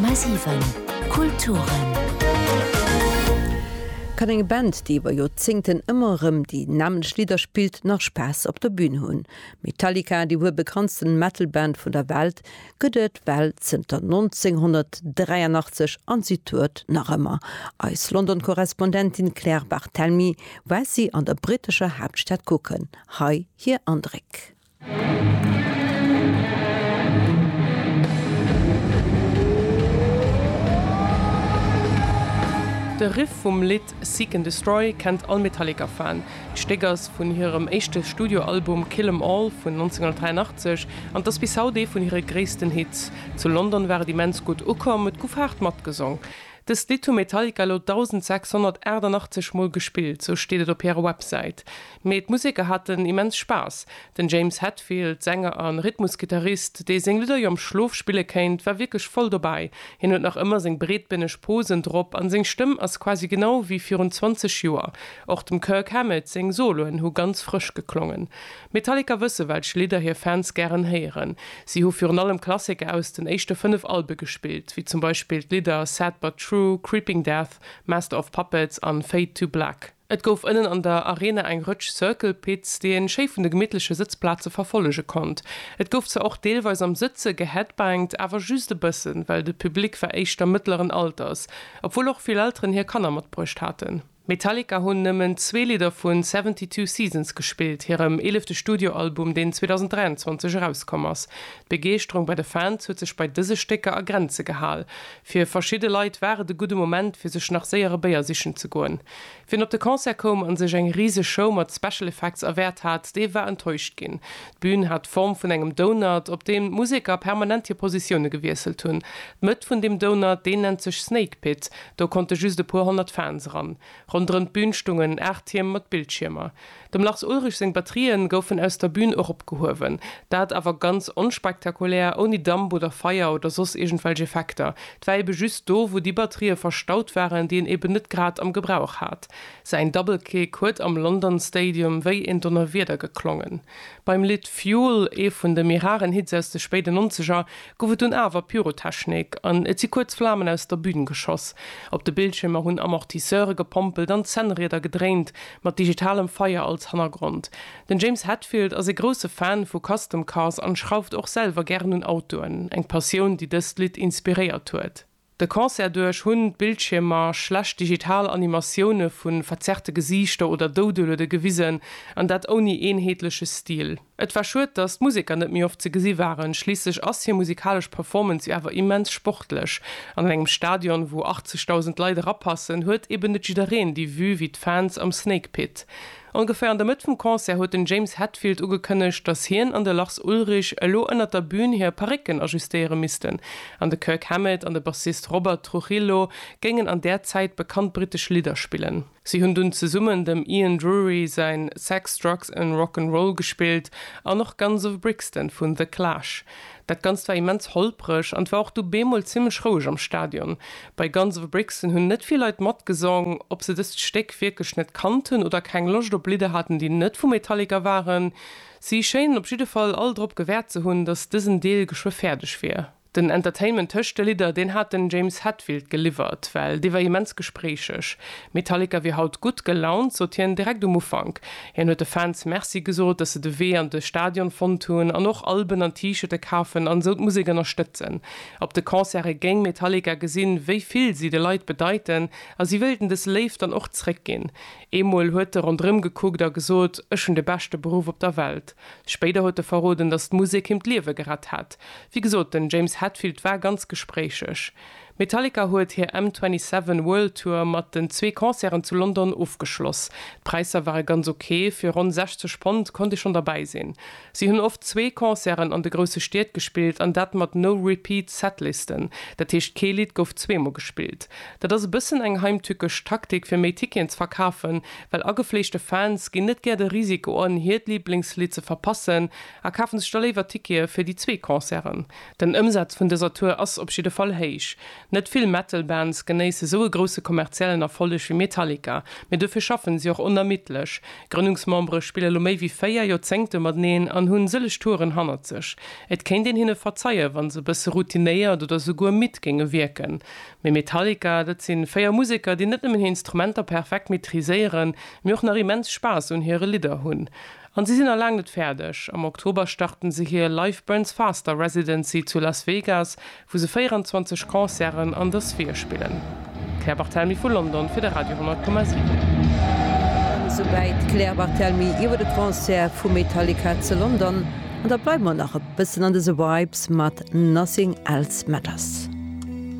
10,7 Kulturen. Kann eng Band, déi iwwer Joerzéngten ëmmer erëm déi nämmlecht Lidder spillt, nach Spaass op der Bün hunn? Metallica, déi wuel bekanntsten Metal-Band vun der Welt, gëtt et well zënter 1983 an si tourt nach ëmmer. Eis London-Korrespondentin Claire Barthelmy war si an der brittescher Haaptstad kucken. Hei hir Andréck. De Riff vum Lidd Seek and Destroy kennt all Metallica-Fan. D'Stéck ass vun hirem éischte Studioalbum Kill 'Em All vun 1983 an et ass bis haut ee vun hire gréissten Hits. Zu London war et immens gutt ukomm, et gouf haart matgesong. Dëst Lidd hu Metallica elo 1.688 Mol gespillt, sou steet et op hirer Websäit. Mee d'Museker haten immens Spaass. Den James Hetfield, Sänger a Rhythmusgittarist, dee seng Lidder jo am Schlof spille kéint, war wierklech voll dobäi. Hien huet nach ëmmer seng breetbéneg Posen drop an seng Stëmm ass quasi genau wéi virun 20 Joer. Och dem Kirk Hammett seng Soloen hu ganz frësch geklongen. Metallica wësse welch Lidder hir Fans gären héieren. Si hu virun allem Klassiker aus den éischte 5 Albe gespillt, wéi zum Beispill d'Lidder Sad But True, Creeping Death, Master of Puppets an Fade to Black. Et gouf ënnen an der Arena eng Rëtsch Circle Pits, déi een schéi vun de gemittleche Sëtzplaze verfollege konnt. Et gouf zwar och deelweis am Sëtze geheadbangt, awer just e bëssen, well de Public war éischter mëttleren Alters, obwuel och vill Elteren hir Kanner matbruecht haten. Metallica hunn nëmmen zwee Lidder vu Seventy Two Seasons gespillt, hirem eelefte Studioalbum, deen 2023 erauskomm ass. D'Begeeschterung bei de Fans huet sech bei dëse Stécker a Grenze gehal. Fir verschidde Leit war et e gudde Moment, fir sech nach séier e Béier sichen ze goen. Wien op de Concert koum a sech eng riseg Show mat Special Effects erwäert hat, dee war enttäuscht ginn. D'Bün hat d'Form vun engem Donut, op deem d'Museker permanent hir Positioune gewiesselt hunn. D'Mëtt vun deem Donut, deen nennt sech Snake Pit, do konnte just e puer honnert Fans eran. Ronderëm d'Bün stungen aacht Tierm mat Bildschiermer. Dem Lars Ulrich seng Batterien goufen aus der Bühn eropgehuewen. Dat awer ganz onspektakulär, ouni Damp oder Feier oder soss iergendwelch Effekter. Et war eben just do, wou déi Batterië verstaut waren, déi en eben net grad am Gebrauch hat. Säin Double Kick huet am London Stadium wéi en Donnerwieder geklongen. Beim Lidd Fuel, ee vun de méi raren Hits aus de spéiden Nonzeger, gouf et dunn awer Pyrotechnik an et si kuerz Flamen aus der Bühn geschoss. Op de Bildschiermer hunn Amortisseure gepompelt an d'Zännrieder gedréint, Mat digitalem Feier als Hannergrond. Den James Hetfield ass ee grousse Fan vu Custom Cars an schrauft och selwer gären un Autoen, eng Passioun déi dëst Lidd inspiréiert huet. De Concert duerch hunn d'Bildschiermer schlecht digital Animatioune vu verzerrte Gesiichter oder Doudeluede gewisen, an dat ouni eenheetleche Stil. Et war schued, dass d'Museker net méi oft ze gesi waren, schliisslech ass hir musikalesch Performance jo awer immens sportlech. An an engem Stadion, wou 80.000 Leit erapassen, huet eben net jiddereen déi Vue wéi d'Fans am Snake Pit. Ongeféier an der Mëtt vum Concert huet den James Hetfield ugekënnegt, dass hien an de Lars Ulrich elo ënnert der Bün hir Parécken ajustéiere missten an de Kirk Hammett an de Bassist Robert Trujillo géingen an där Zäit bekannt brittesch Lidder spillen. Si hunn dunn zesummen dem Ian Drury säin Sex, Drugs and Rock 'n' Roll gespillt an och Guns of Brixton vun The Clash. Dat Ganzt war immens holpreg an 't war och du bemol zimmlech roueg am Stadion. Bei Guns of Brixton hunn net vill Leit matgesong. Ob se dëst Stéck wierklech net kannten oder keng Loscht op Lidder haten, déi net vu Metallica waren, si schéinen op jidde Fall all drop gewäert ze hunn, dass dësen Deel geschwë fäerdeg wier. Den Entertainment tëscht de Lidder, deen hat den James Hetfield geliwwert, well dee war immens gespréicheg. Metallica wier haut gutt gelaunt, sot hien direkt um Ufank. Hien huet de Fans Merci gesot, dass se de Wee an de Stadion fonnt hunn an och Alben an T-Shirte kafen an esou d'Musek ënnerstëtzen. Op de Concerte géing Metallica gesinn, wéi vill si de Leit bedeiten a si wéilten des Léift dann och zréckginn. Eemol huet e ronderëm gekuckt a gesot, Ech hunn de beschte Beruff op der Welt. Spéider huet e verroden, datt d'Musek him d'Liewe gerett hätt. Wéi gesot, den James Hetfield war ganz gespréicheg. Metallica huet hir M27 World Tour mat den zwee Concerten zu London ofgeschloss. D'Präisser ware ganz ok, fir ronn 60 Pond konnt ee schonn derbäi sinn. Si hunn oft zwee Concerten an de grousse Stied gespillt an dat mat No Repeat Setlisten, dat heescht kee Lidd gouf zweemol gespillt. Dat ass e bëssen eng heimtückesch Taktik fir méi Ticketen ze verkafen, Well agefleeschte Fans ginn net gär de Risiko an, hiert Liblingslidd ze verpassen a kafen sech da léiwer Tickete fir déi zwee Concerten. Den Ëmsaz vun dëser Tour ass op jidde Fall héich. Net vill Metal-Bands genéisse sou e grousse kommerziellen Erfolleg wéi Metallica, mee dofir schaffen si och onermiddlech. Grënnungsmembere spille lo méi wéi véier Joerzéngte mateneen an hunn sëlleg Touren hannert sech. Et kéint een hinne verzeien, wann se e bësse routinéiert oder souguer midd géinge wierken. Mee Metallica, dat si véier Museker, déi net nëmmen hir Instrumenter perfekt maîtriséieren, mee och nach immens Spaass un hire Lidder hunn. An si sinn nach laang net fäerdeg. Am Oktober starten se hir Life Burns Faster Residency zu Las Vegas, wou se 24 Concerten an der Sphere spillen. D'Claire Barthelmy vu London fir de Radio 10,7. Souwäit d'Claire Barthelmy iwwer de Concert vu Metallica zu London. An da bleiwe mer nach e bëssen an dëse Vibes mat Nothing Else Matters.